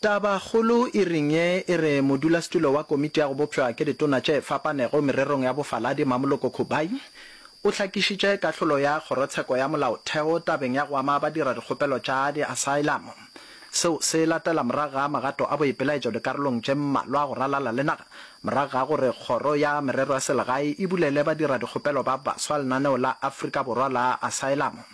Tabakgolo e ring ye e re modulasetulo wa Komiti ya go Bopšwa ke Ditona tše Fapanego Mererong ya Bofaladi Mamoloko Khubai o hlakišitše kahlolo ya Kgorotsheko ya Molaotheo tabeng ya go ama badiradikgopelo tša diasaelamo. Seo se latela morago ga magato a boipelaetšo dikarolong tše mmalwa go ralala le naga morago ga gore Kgoro ya Merero ya Selegae e bulele badiradikgopelo ba baswa lenaneo la Afrika Borwa la asaelamo.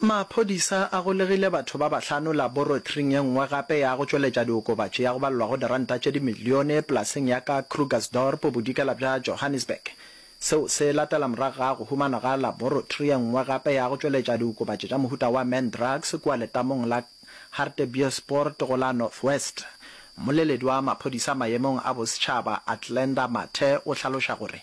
Maphodisa a golegile batho ba bahlano laboratoring e nngwe gape ya go tšweletša diokobatši ya go balelwago diranta tše dimilione polaseng ya ka Krugersdorp bodikela bja Johannesburg. Seo se latela morago ga go humanwa ga laboratory e nngwe gape ya go tšweletša diokobatši tša mohuta wa man drugs kua letamong la Hartbeespoort go la North West. Mmoleledi wa maphodisa maemong a bosetšhaba Athlenda Mathe o hlaloša gore.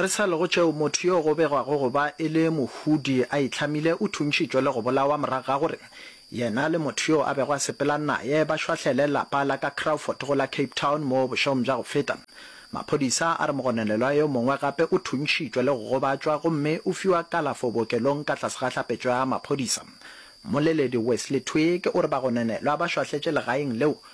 Re sa le go tšeo, motho yo go begwago go ba e le mohudi a itlhamile o thuntšhitšwe le go bolawa morago ga gore yena le motho yo a bego a sepela naye ba šwahlele lapa la ka Crawford go la Cape Town mo bošegong bja go feta. Maphodisa a re mogononelwa yo mongwe gape o thuntšhitšwe le go gobatšwa gomme o fiwa kalafo bookelong ka tlase ga hlapetšo ya maphodisa. Mmoleledi Wesley Twigg o re bagononelwa ba šwahletše legaeng leo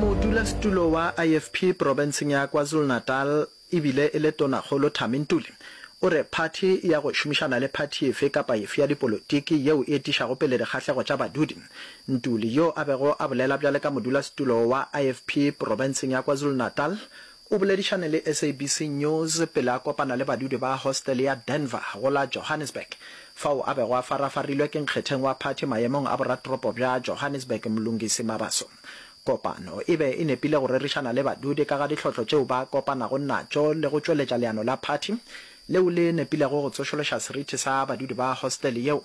modulasetulo wa ifp profenseng ya kwazulu-natal e bile e le tonakgolo thami ntuli o re phathi ya go šomišana le phathi efe kapa efe ya dipolotiki yeo e etišago pele dikgahlego tša badudi ntuli yo a bego a bolela bjale ka modulasetulo wa ifp profenseng ya kwazulu-natal O boledišane le SABC News pele a kopana le badudi ba hostele ya Denver go la Johannesburg, fao a bego a farafarilwe ke nkgetheng wa phathi mayemong a boratoropo bja Johannesburg Mlungisi Mabaso. Kopano e be e nepile go rerišana le badudi ka ga dihlotlo tšeo ba kopanago natšo le go tšweletša leano la phathi leo le nepilego go tsošološa seriti sa badudi ba hostele yeo.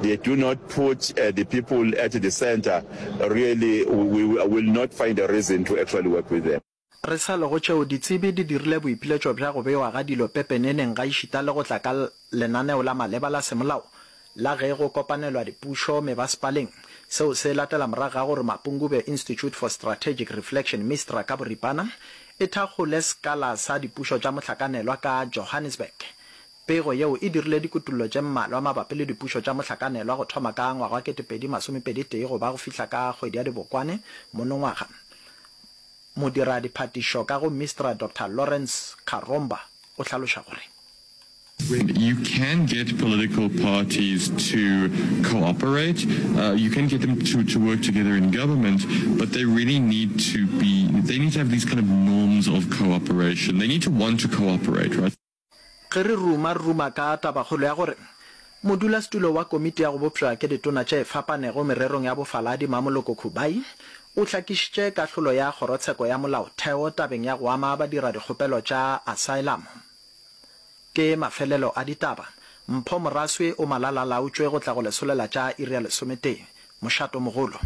They do not put uh, the people at the center. Really, we, we will not find a reason to actually work with them. Re sa le go tšeo, ditsebi di dirile boipiletšo bja go bewa ga dilo pepeneneng gaešita le go tla ka lenaneo la maleba la semolao la ge go kopanelwa dipušo mebasepaleng. Seo se latela morago ga gore Mapungubwe Institute for Strategic Reflection, MISTRA ka boripana, e thakgole sekala sa dipušo tša mohlakanelwa ka Johannesburg. Pego yeo e dirile dikutullo tše mmalwa mabapi le dipušo tša mohlakanelwa go thoma ka ngwaga wa 2021 go ba go fihla ka kgwedi ya Dibokwane monongwaga. Modira-diphatišo ka go MISTRA Doctor Lawrence Karomba o hlaloša gore. When you can get political parties to cooperate, you can get them to to work together in government, but they really need to be, they need to have these kind of norms of cooperation. They need to want to cooperate, right? Ge re ruma, re ruma ka tabakgolo ya gore Modulasetulo wa Komiti ya go Bopša ke Ditona tše Fapanego Mererong ya Bofaladi, Mamoloko Khubai, o hlakišitše kahlolo ya Kgorotsheko ya Molaotheo tabeng ya go ama badiradikgopelo tša asaelamo. Ke mafelelo a ditaba. Mpho Moraswe o malala-a-laotšwe go tla go lesolo la tša iri ya lesometee. Mošato mogolo.